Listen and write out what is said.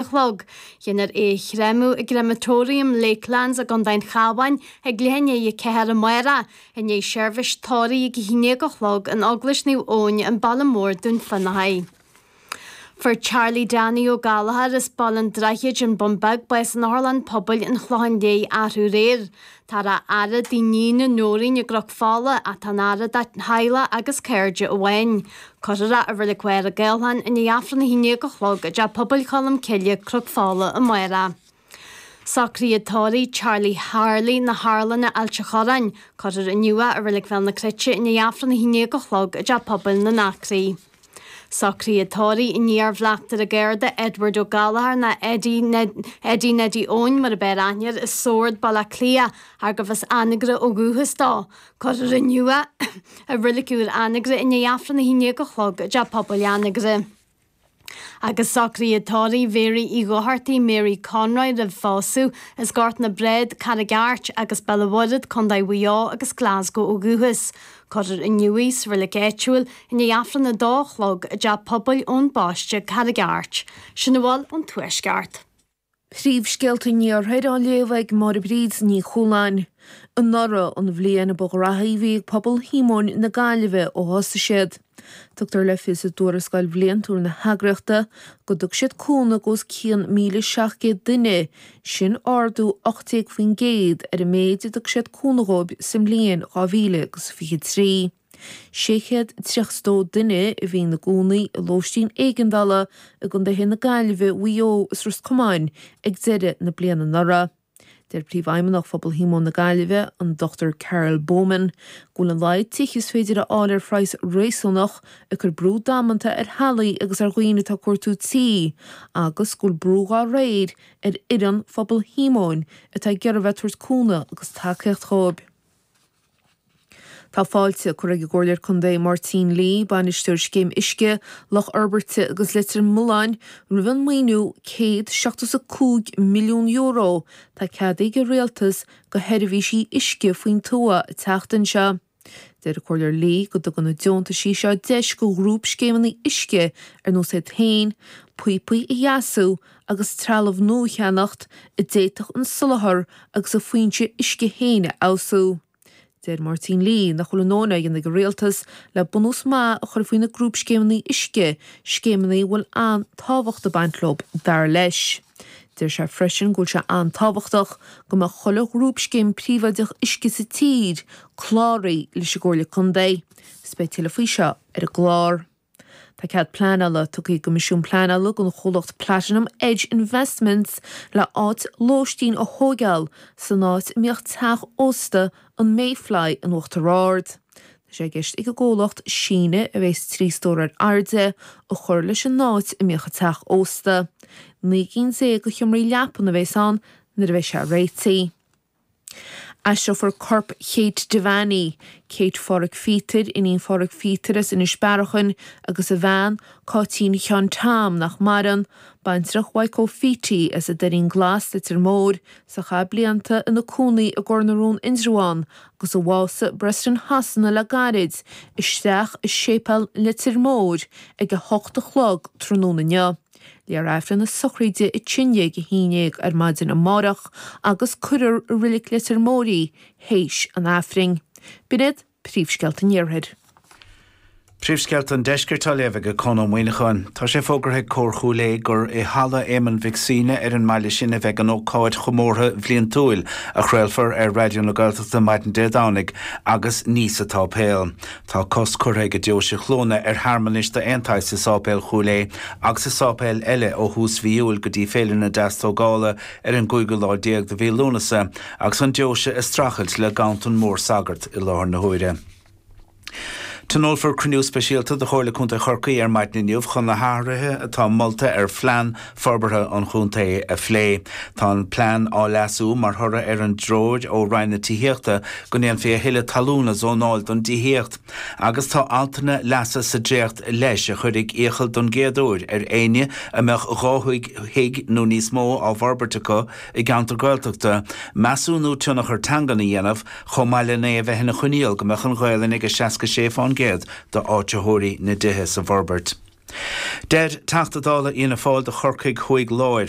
a chlog. Déanfar é a chréamadh i gCrematorium Lakelands i gContae an Chabháin ag leath i ndiaidh a ceathair amáireach, i ndiaidh seirbhís tórraimh ag a haon dhéag a chlog in Eaglais Naomh Eoin An Baile Mór, Dún Fionnachaidh. Fuair Charlie Danny Ó Gallchóir as Baile an Droichid, An Bun Beag, bás in Otharlann Pobail an Chlocháin Léith arú aréir. Tá an fhaire i dtigh a níne Nóirín i gCnoc Fola ach tá an fhaire dá theaghlach agus cairde amháin. Cuirfear é i Reilig Mhachaire Gathlán i ndiaidh Aifreann a haon dhéag a chlog i dTeach Pobail Cholm Cille, Cnoc Fola amárach. Socruithe tórraimh Charlie Harley Na hArlanna, Ailt an Chorráin, cuirfear inniu é i Reilig Bhéal na Cruite i ndiaidh Aifreann a haon dhéag a chlog i dTeach Pobail na nAcraí. Socruithe tórraimh an t-iarbhleachtaire Garda, Edward Ó Gallchóir nó Eddie Neddy Eoin mar ab fhearr aithne air i Sord, Baile Átha Cliath, arbh as Anagaire ó dhúchas dó. Cuirfear inniu é i Reilig Úr Anagaire, i ndiaidh Aifreann a haon dhéag a chlog i dTeach Pobail Anagaire. Agus socruithe tórraimh Mhary Uí Dhochartaigh, Mary Conroy roimh phósadh, as Gort na Brád, Carraig Airt, agus Béal an Mhuirthead, Co. Mhaigh Eo, agus Glasgow ó dhúchas. Cuirfear inniu í sa Reilig Áitiúil i ndiaidh Aifreann a 2 a chlog i dTeach Pobail Eoin Baiste, Carraig Airt, sin a bhfuil ón Tuaisceart. Príomhscéalta an Iarthair á léamh ag Máire Bríd Ní Chualáin. Anuraidh an bhliain ba ghraithí a bhí ag pobal Shíomóin na Gaillimhe ó thosaigh siad. Tugtar le fios i dtuarascáil bhliantúil na heagraíochta go dtug siad cúnamh go os cionn 1,700 duine sin ardú 18% ar an méid a dtug siad cúnamh dhóibh sa mbliain 2023. 632 duine a bhí ina gcónaí i lóistín éigeandála i gContaetha na Gaillimhe, Mhaigh Eo is Ros Comáin ag deireadh na bliana anuraidh. Deir Príomhfheidhmeannach Phobal Shíomóin na Gaillimhe, an Dr Carol Baumann, go bhfuil an laghad tithe is féidir a fháil ar phraghas réasúnach ag cur brú damanta ar theaghlaigh agus ar dhaoine atá ag cuartú tí agus go bhfuil brú dhá réir ar fhoireann Phobal Shíomóin atá ag iarraidh a bheith ag tabhairt cúnamh agus tacaíocht dhóibh. Tá fáilte curtha ag an gComhairleoir Condae Máirtín Lee, Bainisteoir Scéim Uisce Loch Hirbirte agus Leitir Mealláin roimh an maoiniú €175 milliún atá ceadaithe ag an Rialtas go sheirbhísí uisce faoin tuath an tseachtain seo. Deir an Comhairleoir Lee go dtugann na deontaisí seo deis go ghrúpscéimeanna uisce ar nós iad féin, píopaí a dheasú agus trealamh nua a cheannacht a d'fhéadfadh an soláthar agus an fhoinse uisce féin a fheabhsú. Deir Máirtín Lee nach bhfuil a ndóthain á dhéanamh ag an Rialtas le bunús maith a chur faoi na grúpscéimeanna uisce, scéimeanna a bhfuil an-tábhacht ag baint leo, dar leis. Deir sé freisin go bhfuil sé an-tábhachtach go mbeadh chuile ghrúpscéim príobháideach uisce sa tír cláraithe leis an gComhairle Contae. Is beidh tuilleadh faoi seo ar an gclár. Tá cead pleanála tugtha ag an gCoimisiún Pleanála don chomhlacht Platinum Edge Investments le áit lóistín a thóigeáil san áit a mbíodh teach ósta an Mayfly in Uachtar Ard. Tá sé i gceist ag an gcomhlacht síneadh a bheas trí stór ar airde a chur leis an áit a mbíodh an teach ósta. Naoi gcinn déag de sheomraí leapan a bheas ann nuair a bheidh sé réitigh. Aistreofar corp Kate Devaney, Kate Pháraic Phíotair, iníon Pháraic Phíotair as Inis Bearachain, agus a bhean, Cáitín Sheáin Tom, nach maireann, baintreach Mhaidhc Chóil Pheaití, as an Doirín Glas, Leitir Móir, is a chaith blianta ina cónaí i gCor na Rón Indreabhán, agus a bhásaigh i bPreston Shasana le gairid, isteach i Séipéal Leitir Móir ag a hocht a chlog tráthnóna inniu. Léifear Aifreann na sochraide a t-aon dhéag a haon déag ar maidin amárach agus cuirfear i Reilig Leitir Móir í théis an Aifrinn. B'in iad príomhscéalta an iarthair. Príomhscéalta an Deiscirt á léamh ag Conn Ó Muíneacháin Tá sé fógartha ag Cór Chúil Aodha gur i Halla Éamonn Mhic Suibhne ar an mbaile sin a bheidh an ócáid chomórtha bhliantúil a chraolfar ar Raidió na Gaeltachta maidin Dé Domhnaigh agus ní sa tsáipéal Tá cosc curtha ag Deoise Chluana ar shearmanais d'aon tsaghas i Sáipéal Chúil Aodha agus i sáipéil eile ó thús mhí Iúil go dtí Féile na Deastógála ar an gcúigiú lá déag de mhí Lúnasa agus an deoise ag streachailt le ganntan mór sagart i láthair na huaire. Tionólfar cruinniú speisialta de Chomhairle Contae Chorcaí ar maidin inniu chun na hathruithe atá molta ar phlean forbartha an chontae a phlé. Tá an plean á leasú mar thoradh ar an dtreoir ó Roinn na Tithíochta go ndéanfaí a thuilleadh talún a zónáil don dtithíocht agus tá altanna leasa sa dréacht leis a chuirfidh iachall don gcéad uair ar éinne a mbeadh dhá thigh nó níos mó á bhforbairt acu i gceantar Gaeltachta measúnú tionchar teangan a dhéanamh chomh maith len é a bheith ina choinníoll go mbeadh an Ghaelainn ag 66 fán gcéad d'áitritheoirí na dtithe sa bhforbairt. Deir Teachta Dála Fhianna Fáil do Chorcaigh Thuaidh Lár,